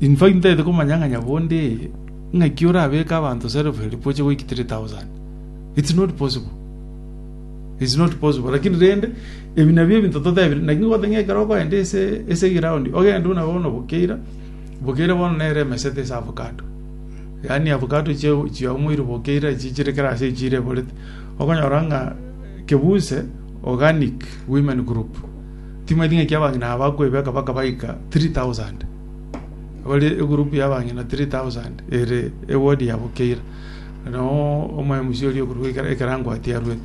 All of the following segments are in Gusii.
Intwe intagete komanya ng'a nyabondo eye, ng'aki orabeke abanto serefu elfu gochia goiki three thousand? It's not possible. It's not possible. Lakini rende, ebi nabio ebinto totebire. Naki ngote ng'a ekero okoenda ase, ase eground, ogende buna bono bokeira, bokeira bono nere emesete ase avocado. Yaani avocado chio chiaumorire bokeira echi chire kera ase echi chireborete. Okonyora ng'a Kebuse Organic Women Group. Timanyeti ng'aki abang'ina aba bakwebeka baka baika 3,000. Bare egurupu ya abang'ina 3,000 ere ewodi yabo keira. No omoemusi oria okorwa ekera ekera ngwati arue.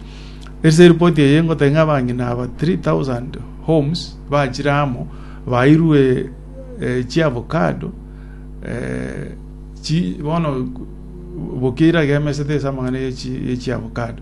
Ase eripoti eye ngoteba ng'a abang'ina aba 3,000 homes bachire amo bairwe eh, chiavocado eh, chi bono bokeira gemesete ase amang'ana ye chi- ye chiavocado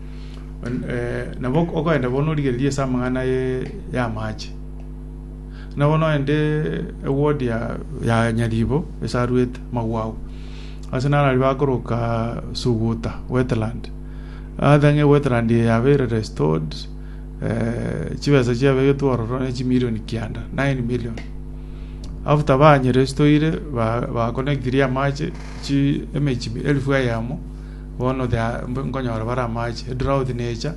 En- eh, nabo ok- okoenda bono origereria ase amang'ana ye- y'amache na bono oende eward ya ya nyaribo esaruete magwago ase naro aria bakoroka suguta wetland othe ng'a wetland eye yaba ere restored eh, chibesa chiabegetwe ororo ne chimilion kianda 9 million after banyerestoire ba- baconnectirie amache chi emechi elfu eyemo Bono the mb- nkonyora bare amache, drought necha,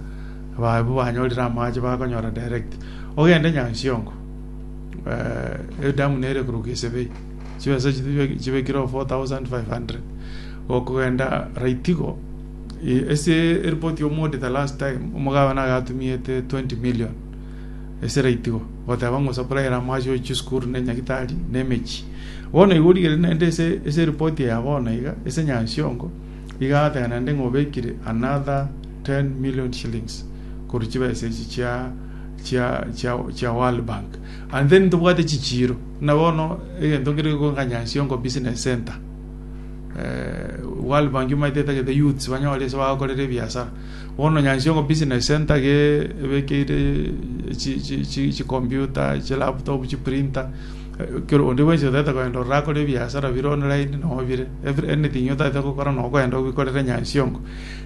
ababwo banyorire amache bakonyora direct. Ogende Nyansiongo, eh, edamu nere kuruka Isebei, chibesa chibe- chibekire o 4500. Gokogenda raitigo, i- ase eripoti y'omouditor last time, omogabana agatumiete 20 million. Esera itigo goteba ng'a osapuraere amo ase chisukuru, na enyagitari, na emechie. Bono igo origeretie naende ase ase eripoti eye ya bono iga ase Nyansiongo iga agateba naende ng'a obekire another 10 million shillings korwa chibesa echi chia chia chia chia World Bank. And then ntobwate chichiiro. Buna bono egento nkere gekoka Nyansiongo Business Centre. Eh, World Bank imaete etagete youths banyore ase bagakorera ebiasara. Bono nyansiongo business centre iga ebekeire chicomputer, chilaptop, chiprinter, onde bwensi otaete kogenda ororo akore ebiasara bire online nonya bire, anything otaete gokora nonya kogenda obikorere nyansiongo.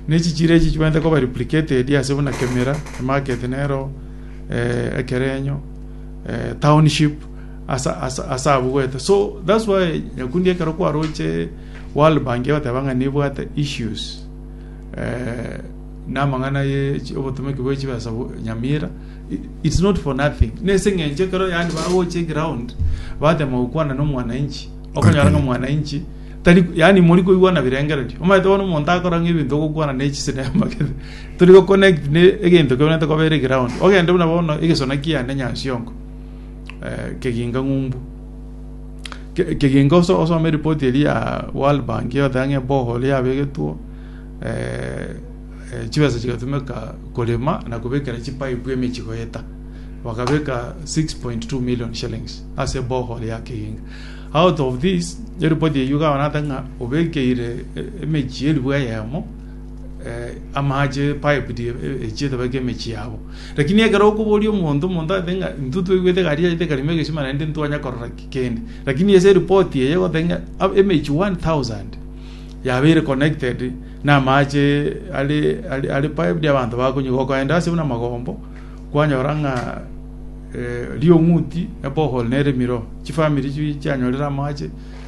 Na echichira echi chibwenerete koba replicated ase buna Kemira, emarket nero Ekerenyo, township ase abwo goeta. So that's why nyakundi ekero kwaroche World Bank egoteba ng'a nebwate issues. eh, namang'ana ye chi- obotomeki bwe chibesa bo- nyamira i- it's not for nothing nese ng'enche kero yani bagocha eground batema gokwana na omwananchi okonyora ng'a omwananchi tari yani mori koigwa na birengererio omanyete bono omonto akora ng'a ebinto ogokwana na echisinema kere tori go connect ne egento keberente kobera eground ogende buna bono egesona kiane nyasiongo eh, keginga ng'umbu Kegenke osome ripoti eria ya World Bank egoteba ng'a ebohoro yabegetwe chibesa chigatumeka korema na kobekera chipaipu emechie goeta. Bakabeka 6.2 million shillings ase ebohoro ya kegenke. Out of this eripoti eyio iga abana bateba ng'a obekeire emechie elifu eyemo. amaache pipe die echie etabeke emechie yabo lakini ekero okoboria omonto omonto ate ng'a intwe twaigwete egari yaito ekarimo egesima naende ntitwanya korora ki kende lakini ase eripot eye egoteba ng'a emechie one thousand yabeire connected na amaache are are are piped abanto bakonywa gokoenda ase buna amagombo kwanyora ng'a riong'uti ebohol neremire oo chifamiri chianyorire amaache.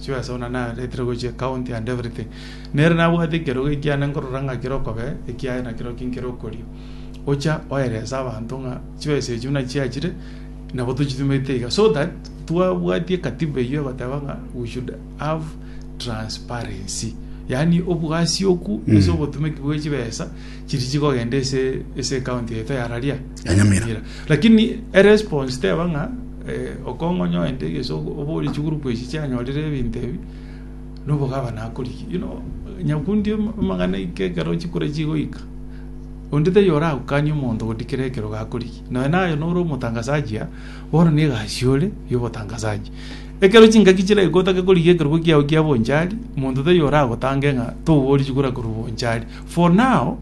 Sure ase buna nareterwe gochia ecounty and everything. Nere nabwate ekerogo ekiane nkorora ng'a kere okobee ekiaye nakerokio nkere okorio. Gocha oerese abanto ng'a chibesa echio buna chiachire nabo tochitumete iga. So that twabwatie katiba eyio egoteba ng'a we should have transparency. Yaani obwasi okwo ase obotumeki bwe chibesa chiri chigogenda ase ase ecounty yaito ya raria Ya Nyamira. lakini eresponse teba ng'a eh, okongonyo ende egeso obori chigroup echi chianyorire ebinto ebi nobogaba nakoriki you know nyakundi amang'ana ike ekero chikura chigoika onde taiyo oragukanie omonto goti kera ekero gakoriki noe naye nore omotangasaji ya bono ne egasi ore yobotangasaji ekero chingaki chire gotake korigi ekerogo kiago kia bonchari monto taiyo oragotange ng'a tobori chikura korwa bonchari For now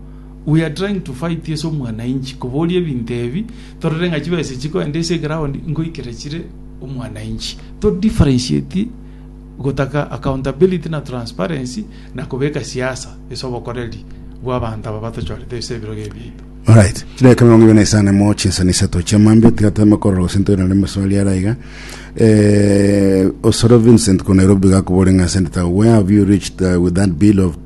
we are trying to fight ase omwanainchi koboria ebinto ebi torore ng'a chibesa chikoenda ase eground ngoikera chire omwanainchi to differentiate gotaka accountability na transparency na kobeka siasa ase obokoreri bw'abanto aba batochorete ase ebirogo ebi biaito. Alright, chidakika emerongo ebere na isano mo chinsani isato chia mambia tiga toeme korora gose ntoirane na ameswali are aiga Eh, osoro Vincent ko Nairobi gakobore ng'a Senator where have you reached uh, with that bill of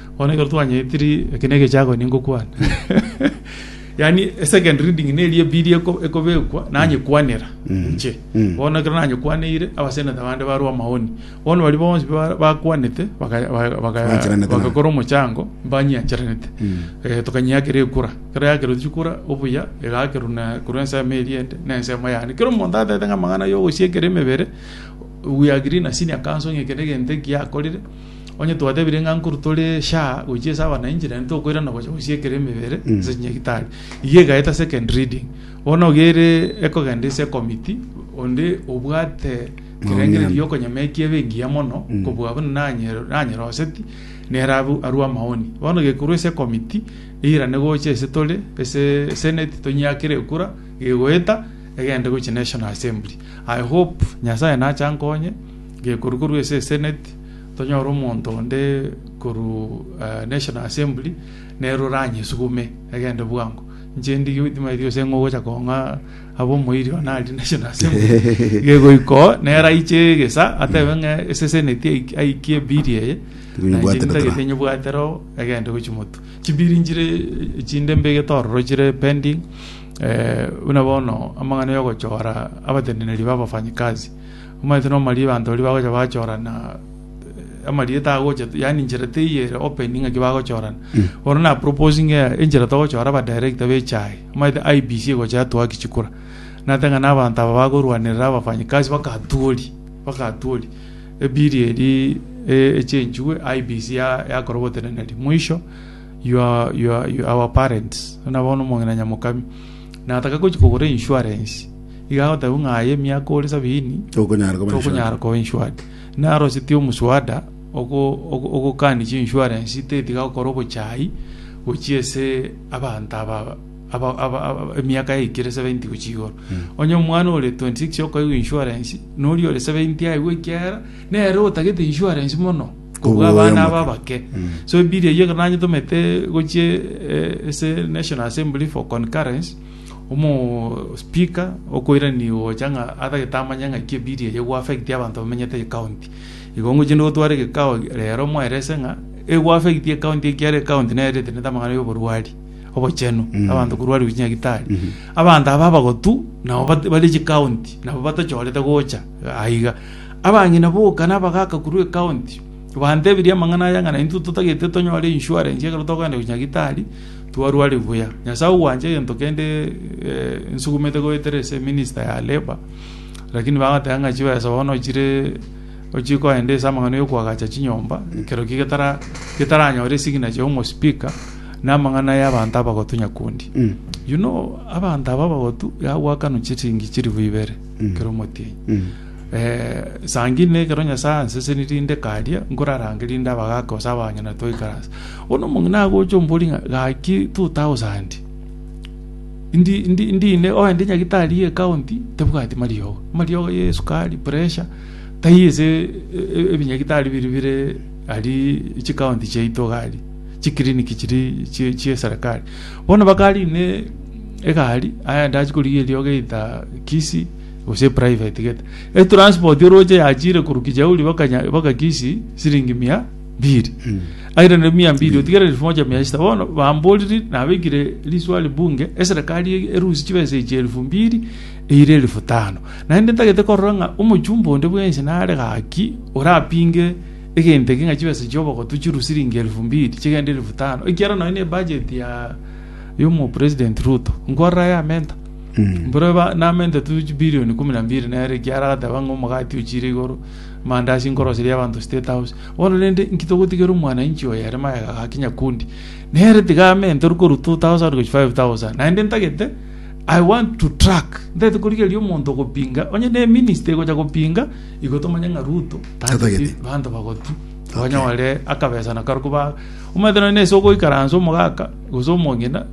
Bono ekero twanyetiri, eke negechago ningokwana. Yaani second reading neri ebiiri eko- ekobekwa nanyekwanera inche. Mm. Bono ekero nanyekwaneire, abaseneta bande barwa amaoni. Bono baria bonsi ba- bakwanete baka- ba- baka- Bancheranete nao. bagakora omochango mbanyiancheranete. Mm. Eh, tokanyiakera ekura. Ekero yakerwa chikura, obuya egakerwa na korwa ensemo eria ende, na ensemo yane. Kera omonto atete ng'a amang'ana ya ogosiekera emebere, we agree na senior counsel ng'a eke negento ekiakorire, Onye twatebirie ng'a nkoru tore shaa gochia ase abananchi, naende tokoirana gocha gosiekera emebere Mm. ase chinyagitari. Eyio egaeta second reading. Bono iga ere ekogenda ase ecommittee, onde obwate ekerengerero Maoni. gi'okonyama ekiya ebe engiya mono, Mm. kobua buna nanyero- nanyeroseti, nere abu- arue amaoni. Bono gekorwa ase ecommittee, eirane gocha ase tore, ase senate, tonyiakere ekura, gegoeta, egende gochia national assembly. I hope Nyasaye nache ankonye, Gekorwa korwa ase eseneti, tonyore omonto onde korwa National Assembly nere oranyesugume egende bwango. Inche ndige oyo timaeti gose ng'a ogocha kong'a abe omoiri one aria National Assembly. Gegoika oo, nere aiche egesa atebe ng'a ase eseneti aik- aikie biri eye, na inche Tinyebwatera nintagete toro. nyebwatera oo egende gochia motu. Chibiri nchire chinde mbegete ororo chire pending, buna bono amang'ana ya ogochora abateneneri ba abafanyikazi. Omanyete nomari'e abanto baria bagocha bachorana amari'e tagocha yaani enchera teiyo ere open ng'aki bagochorana. Bono na proposinge enchera togochora aba director b'echae. Omanyete IEBC egocha yatoa kichikura. Natete ng'a na abanto aba bakorwanerera abafanyikazi bakatuoria bakatuoria ebill eria e echenchigwe IEBC ya yakora oboteneneri. Mwisho your your our parents buna bono omong'ina Nyamokami. Nataka gochia kogora insurance, iga agoteba ng'a aye emiaka ore sabini Tokonyara koba tokonyara koba insured. Naroseti omuswada ogo- ogo- ogokani chinsurance teti gakora obochai gochia ase abanto aba aba- aba- aba- emiaka yaikire 70 gochia igoro onye omwana ore 26 okaigwa insurance noria ore 70 aigwa ekiagera nere otagete insurance mono kobua Obwoyo abana aba omoke. abake so ebiiri eyio ekero nanyetomete gochie eh, ase national assembly for concurrence omo speaker okoirani gocha ng'a atagete amanye ng'aki ebiiri eyio ego affect abanto bamenyete ecounty igo ngochie ndotware egekao rero moerese ng'a ego affect ecounty ekiagera ecounty nere eretenete amang'ana ya oborwari obochenu Mm. abanto korwari gochia nyagitari Mhm. abanto aba abagotu nabo bate- bare chicounty nabo batachorete gocha aiga. Abang'ina boka nabagaaka korwa ekaonti, bantebirie amang'ana aya ng'a naintwe totagete tonyore insurance ekero togenda gochia nyagitari twarware buya. Nyasae ogwancha egento kende nsugumete goetera ase minister ya labour, lakini bagateba ng'a chibesa bono chire ochie koenda ase amang'ana yokoagacha chinyomba ekero ki getara getaranyore esignature ya omospika na amang'ana ya abanto abagotu nyakundi. You know abanto aba abagotu yagoakanwa chiringi chilifu ibere kera omotienyi. Sangirie nekero Nyasae ansesenirie inde karia nkorarange rinde abagaaka gose abanyene toikare ase. Bono omong'ina agocha omborie ng'a gaki two thousand ndi ndi ndine oe ndi nyagitari ye county tebwati mariogo. Amariogo ye esukari, pressure taiyo ase ebinyagitari biria bire aria chi county chiaito iga aria chi clinic chiria chi chi eserekari. Bono bakare inde egari aye ndachie korigia eriogo either Kisii. gose private gete e transport oroche yachire korwa kijauri baka Nya- baka kisi siringi mia mbiri Mm. aire ne mia mbiri otigere elfu moja mia sita bono bamboriri nabekire riswali bunge eserekari e- erusi chibesa echi elfu mbiri eire elfu tano naende ntagete korora ng'a omochumba onde bwensi nare gaki orapinge egento eke ng'a chibesa chia obogotu chirwe siringi elfu mbiri chigende elfu tano ekiagera nonya na ebudget ya yomo president ruto nkorora yamenta Mboro eba namente tu chibirioni ikomi na mbiri nere ekiya aragateba ng'a omogati ochiire igoro, amandasi nkoroseria abanto State House. Bono rende, inki togotigera omwananchi oyo ere magega gaki nyakundi? Nere tiga amenterwe korwa 2,000 gochia 5,000. Naende ntagete, I want to track. Ntagete korigereria omonto ogopinga, onye ne minister egocha gopinga, igo tomanye ng'a Ruto Tatageti. tageti banto bagotu. Onye ore akabesa nako aria koba, omanyete nonya nase ogoikaransa omogaka, gose omong'ina,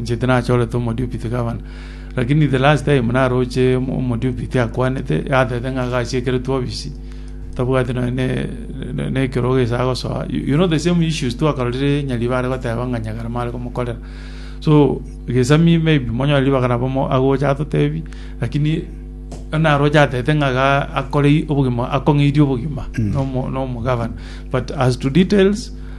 Inche tinachorete omodiopiti gavana, lakini the last time naroche omodiopiti akwanete atete ng'a agachiekeretwe obisi tabwati nonya ne ne ekerogo ase agosoa you know the same issues twakarorire nyaribo are goteba ng'a nyagarama are komokorera so gesami maybe monyore ribaga nabo mo agocha atotebi lakini naroche atete ng'a iga akore obogima akong'eirie obogima na omo na omogavana but as to details.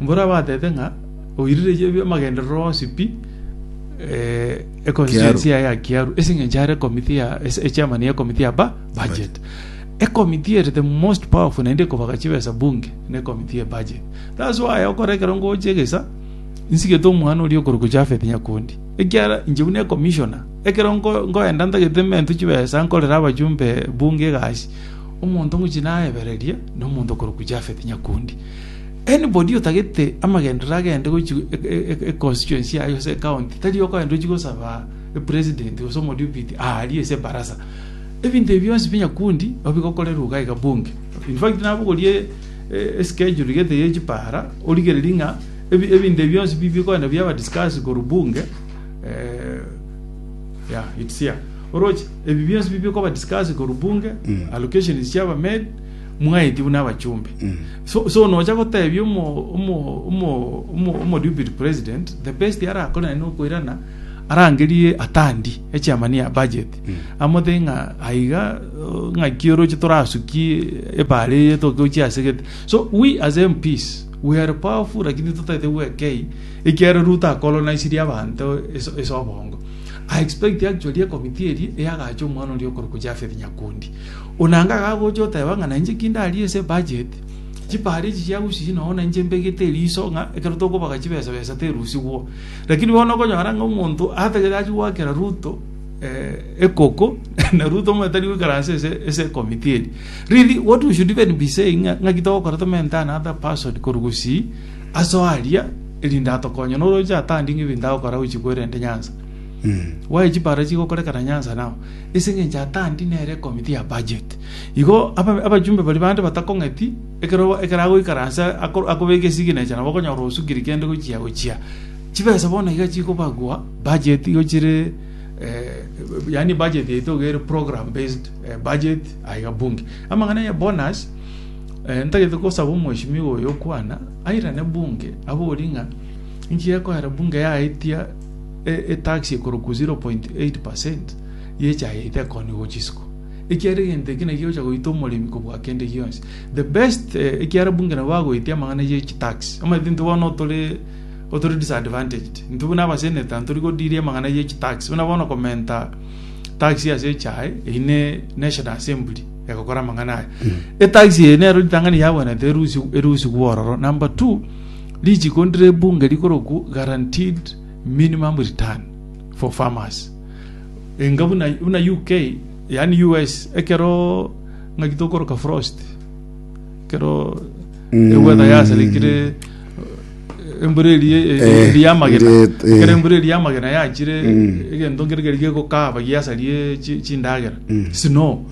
Mborabatebe ng'a oirirerie ebiamagenderero onsi pi econstituency yaye ya Kiaru ase eng'encho are committee ya echairman ye committee ya budget. Ecommittee ere the most powerful naende ekobaka chibesa bunge ne committee ye budget. That's why okore ekero ngocha egesa nsigete omwana oria okorokwa Japhet Nyakundi ekiara inche buna ecommissioner ekero nkoenda ntagete emento chibesa nkorere abajumbe bunge egasi omonto ngochia nayebereria nomonto okorokwa Japhet Nyakundi. Anybody otagete amagenderero agende gochia e constituency yaye gose e county tari okoenda ochie gosaba e president gose omodepute aaria ase ebaraza. Ebinto ebi bionsi pi nyakundi nabo bigokorerwa iga iga bunge. In fact nabogorie e schedule gete ye chipara origererie ng'a ebinto ebi bionsi pi bikoenda biaba discussed korwa bunge yeah it's here. Oroche ebi bionsi pi bikoba discussed korwa bunge, allocations chiaba made, Mwaetigwe nabachumbe. So, so nocha gotebia omo omo omo omo omo deputy president the best arakore naye nokoirana arangerie atandi echairman ya budget amothe ng'a aiga uh, ng'aki oroche torasuki ebare eye tokochia asegete so we as MPs we are powerful lakini totete gwekei ekiara Ruto akolonisirie abanto ase ase obongo I expect actually ekomiti eri eyagacha omwana oria okorokwa Japhet Nyakundi Onanga agagocha oteba ng'a nainche ki ndarie ase ebudget, chipara echi chiagusiria nonya na inche mbegete eriso ng'a ekero tokobaga chibesa besa terusigwo. Lakini bono okonyora ng'a omonto atagete achie goakera Ruto ekoko na Ruto omanyete tari goikaransa ase ase ecommittee eri. Really what we should even be saying ng'a ng'aki togokora to maintain another person korwa gusii aso aria erinde atokonye na oroche atandinge ebinto agokora gochia koerente Nyanza. Why chipara chigokorekana Nyanza now? ase engencho atandi nere committee ya budget. Igo aba abajumbe baria bande batakong'eti, ekero ekero agoikaransa ako akobeka esignature nabo okonyora osukire kende gochia gochia. Chibesa bono iga chikobagwa budget igo chire yaani budget yaito iga ere program based budget aye iga bunge. Amang'ana ya bonus ntagete kosaba omheshimiwa oyo okwana airane bunge abori ng'a inki gekoera bunge yaetia. etax ekorokwa 0.8 per cent yechayete ekoni gocha isiko ekiara egento eke naki gegocha goita omoremi kobua kende gionsi the best eh, ekiara bunge nabo bagoetia amang'ana ye chitax omanyete intwe bono otore otore disadvantaged intwe buna abaseneta ntori godiri amang'ana ye chitax buna bono komenta tax ase echae eyi ne national assembly egokora amang'ana aya etax eye nero ritang'ani yabwenete erusi erusi gwororo number two Richiiko ndire ebunge rikorokwu guaranteed minimum return for farmers. Enga buna buna UK yaani US ekero ng'aki tokoroka frost ekero eweather yaserikire eh, embura eri eh, Eh, eri yamagena ret- eh. ekero embura eri yamagena yachire egento nkere keri gegokaba giasarie chi- chindagera snow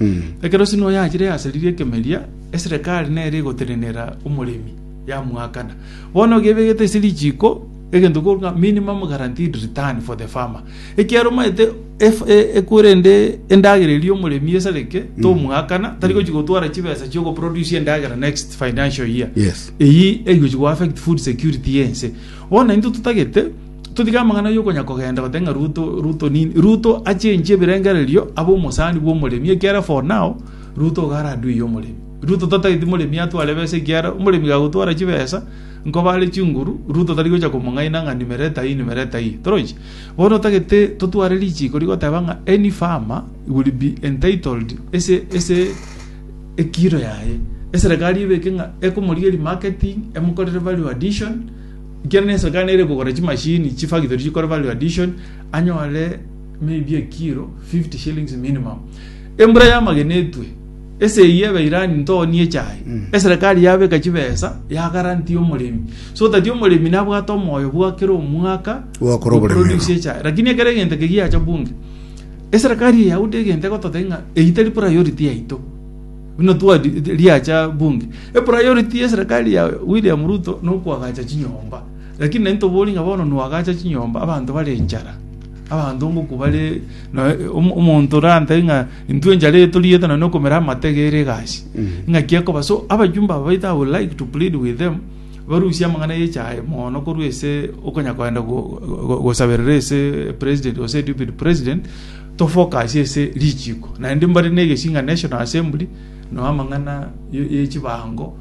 ekero snow yachire yasaririe ekemeria eserekari nere egotenenera omoremi yamuakana. Bono gebegete ase richiko egento koru ng'a minimum guaranteed return for the farmer. Ekiaro maete ef e ekure ende endagera eria omoremi esareke tomuakana tari gochi gotwara chibesa chio go produce endagera next financial year. Yes. Eyi egochi go affect food security ya ense. Bono intwe totagete totige amang'ana yo konya kogenda goteba ng'a Ruto Ruto nini. Ruto a change ebirengererio abe omosani bwa omoremi ekiara for now Ruto iga are adui y'omoremi. Ruto tatageti moremi atware ebesa ekiagera omoremi gagotwara chibesa nkoba are chinguru, Ruto tari gocha komong'aina ng'a nimero ete ayio nimero ete ayio. Torochi? Bono tagete totware richiko rigoteba ng'a any farmer will be entitled ase ase ekiro yaye. Eserekari ebeke ng'a ekomorigeria marketing, emokorere value addition, ekiagera na eserekari nere ekogora chimashini chifactory chikore value addition anyore maybe ekiro fifty shillings minimum. Embura y'amagena etwe. Ase eyio Abairani ntoonie echae. Eserekari yabeka chibesa yagarantie omoremi so that omoremi nabwate omoyo bwa kera omwaka Gwakora go oboremi produce abo. echae. Lakini ekero egento eke giacha bunge, eserekari eyaude egento egototeba ng'a eyio tari priority yaito. Buna twa riacha bunge. Epriority y'eserekari ya William Ruto nokoagacha chinyomba. Lakini nai ntobori ng'a bono noagacha chinyomba abanto bare enchara. Abanto ngoko bare nonya omonto orantebie ng'a intwe enchara etoriete nonya okomera amatega ere egasi ng'aki akoba so abajumbe aba baito I would like to plead with them barusie amang'ana y'echae mono korwa ase okonya kogenda gosaberera ase president gose deputy president to focus ase richiko naende mbare na egesi ng'a national assembly nonya amang'ana y'echibango.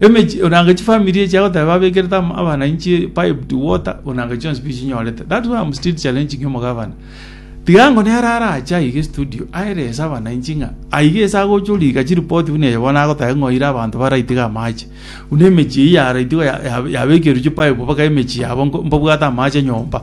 emechi onanga chifamiri echi agoteba babekerete ama- abana inche pipe to water onanga chionsi pi chinyorete that why am still challenging omogabana tiga ango nere arache aiga estudio aerese abananchi ng'a aiga ase agocha orika chiripoti buna eye bono agoteba ng'a oira abanto baraitiga amache buna emechi eyio yaraitiga ya- ya- yabekerwa chipaip mpaka emechi yabo nko- mbabwate amache nyomba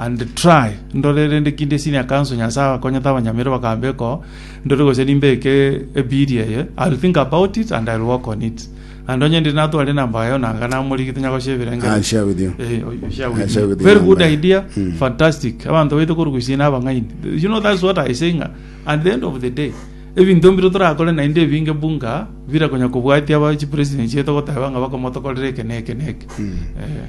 And try ndore rende ki ndie senior council nyasae akonyete abanyamiri bakamba eko ndore gose nimbeke e bill eye I'll think about it and I'll work on it and onye ndiri natware enamba yaye onanga namorigi tonya goshebera engeri I'll share with you. Eh, oh, you share with I'll share me. with you very good number. idea fantastic abanto baito korugusia na abang'aini you know that's what I say ng'a at the end of the day ebinto mbire torakore naende ebinge bunga bire konya kobwatia aba chi president chieto goteba ng'a bakomotokorera eke na eke na eke Eh.